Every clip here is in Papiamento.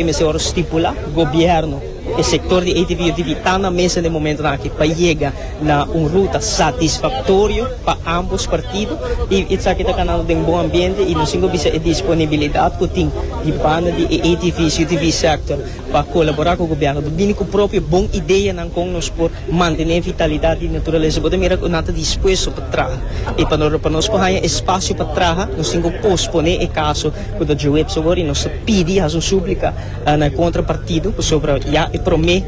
E mester ora stipula gobierno, e sector di ATV yo dibi ta na mesa den momentonan aki pa yega na un ruta satisfactorio pa ambos partido y esaki ta ganando den bon ambiente y nos tin cu bisa e disponibilidad cu tin di banda di e ATV's, UTV sector pa colabora cu gobierno pa bini cu propio bon ideanan con nos por mantene vitalidad di naturaleza. Bo ta mira cu nan ta dispuesto pa traha y pa nos por haya espacio pa traha nos tin cu pospone e caso. ku ta jubi epso wor i nos ta pidi i hasi un súplika na e kontrapartido pasobra ya e promé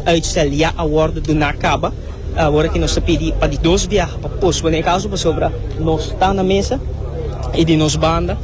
uitstel ya a wòrdu duná kaba. Awor aki nos ta pidi pa di dos biaha pa pospone e kaso pasobra nos ta na mesa i di nos banda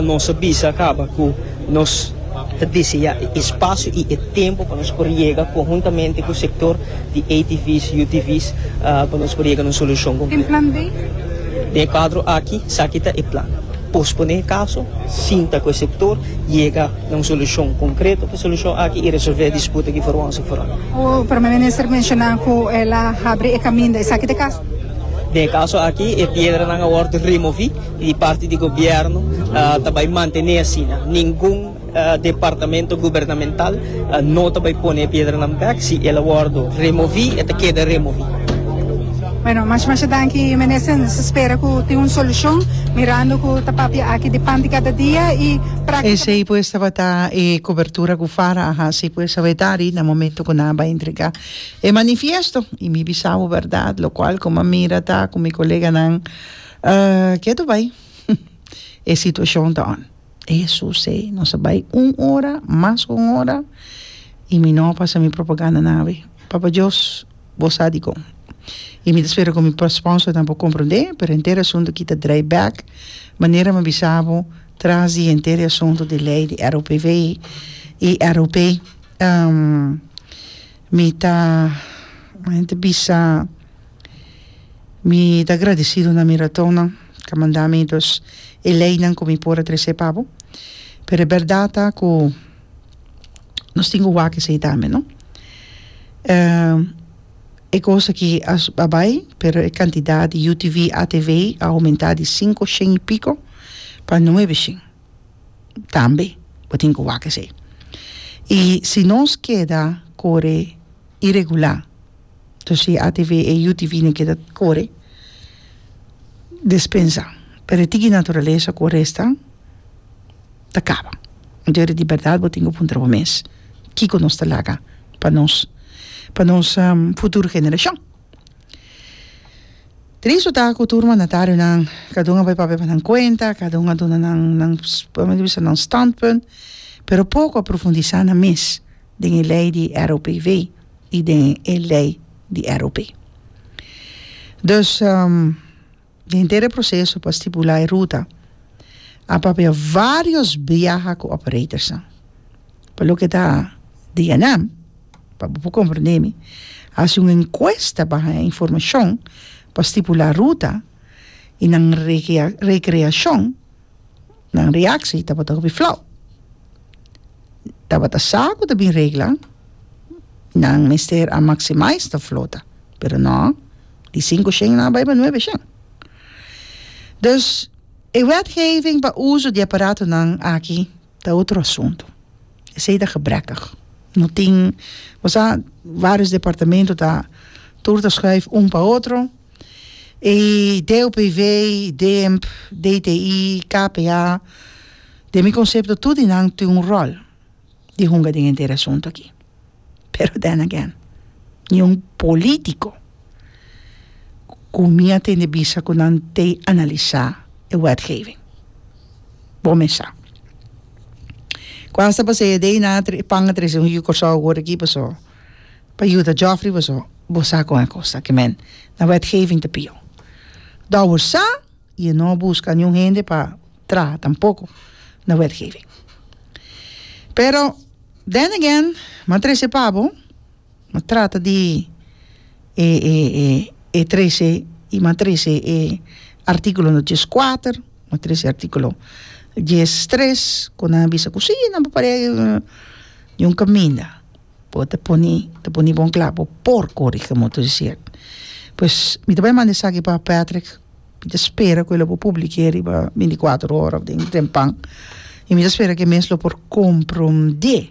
nos a bisa kaba ku nos ta deseá e espasio i e tempu pa nos por yega konhuntamente ku sektor di ATV's, UTV's pa nos por yega na un solushon konkreto. Den e kuadro aki esaki ta e plan. Posponé e kaso, sinta ku e sektor, yega na un solushon konkreto pa e solushon aki i resolvé e disputa ku Forwans i Foron. Ku Prome Minister menshoná ku el a habri e kaminda, esaki ta e kaso? Den e kaso aki e piedranan a wòrdu removí i di parti di gobièrnu ta bai mantené asina. Ningun. Departamento gubernamental no ta bay pone e piedranan bek, si el a wordo removi e ta keda removi. Bueno, masha masha danki minister, nos ta spera cu tin un solucion, mirando cu ta papia aki di pan di cada dia y practicamente. Esey pues tabata e cobertura cu fara a haci pues a Wedari na momento cu nan a bay entrega e manifiesto y mi bisawo berdad locual como a mira ta cu mi coleganan ke tu bay e situacion ta on. E Hesus sey, nos a bai un ora, mas cu un ora, y mi no a pasa mi propaganda nan awe. Papa Dios, bo sa dicon. Y mi ta spera cu mi sponsornan por comprende, pero henter e asunto aki ta draai bek, manera mi a bisa bo, tras di henter e asunto di ley di ROPW y ROP, mi ta, mi ta bisa, mi ta agradecido na mi ratonnan. Ca mandamentos i leinan cu mi por a trecé pa bo, pero e berdad ta cu nos tin cu wak esei tambe, no? E cos aki a a bai, pero e cantidad di UTV, ATV a aumentá di cinco shen i pico pa nuebe shen. Tambe bo tin cu wak esei. I si nos keda core iregulá. Entonces si e atv e utv na keda kore despensa pero e tiki naturalesa ku a resta ta kaba entonces ora di berdad bo tin ku puntra bo mes kiko nos ta laga pa nos pa nos futuro generashon tristo ta ku tur mandataronan kada un a bai papia pa nan kuenta kada un a duna nan nan kòmen ta bisa nan standpunt pero poko a profundisa nan mes den e lei di ROPV. y den e ley di ROP. Dus den henter e proceso pa stipula e ruta a papia varios biaha cu operatorsnan. Pa loke ta di Enam, pa bo por comprende mi, a haci un encuesta baha e informacion pa stipula ruta y nan recreacion. Nan reaksi tabata hopi flau. Tabata sa ku ta bin regla, nan mester a maksimais ta flota. Pero no, di sinku shen nan a bai pa nuebe shen. Dus, e wetgeving pa uso di e aparatonan aki ta otro asuntu. Esei ta gebrekkig. No tin, ku sa, vários departamentu ta tur ta schuif un pa otro. ei DUPV, DEMP, DTI, KPA, den mi concepto tur di nan tin un rol di hunga den enter e asunto aki. Pero then again, ni un politico cu mi a tende bisa cu nan tey analisa e wetgeving. Bo mes sa. Cu asta pa seya dey nan a tre, e pan a trece un yu Corsou awor aki paso. pa yuda Geoffrey paso bo sa con e cos taki men na wetgeving ta pio Douwer sa y e no busca niun hende pa traha tampoco na wetgeving pero then again m'a trece pa bo m'a trata di e e e e trece y m'a trece e articulo no dies cuater m'a trece articulo dies tres cu nan a bisa cu si nan paparea niun caminda Bo ta pone ta pone bon kla bo por kore kiko bo ta hasi e pues mi ta bai manda esaki pa Patrick mi ta spera ku e lo por publike riba binti kuater ora den tempan y mi ta spera ke e mes lo por komprondé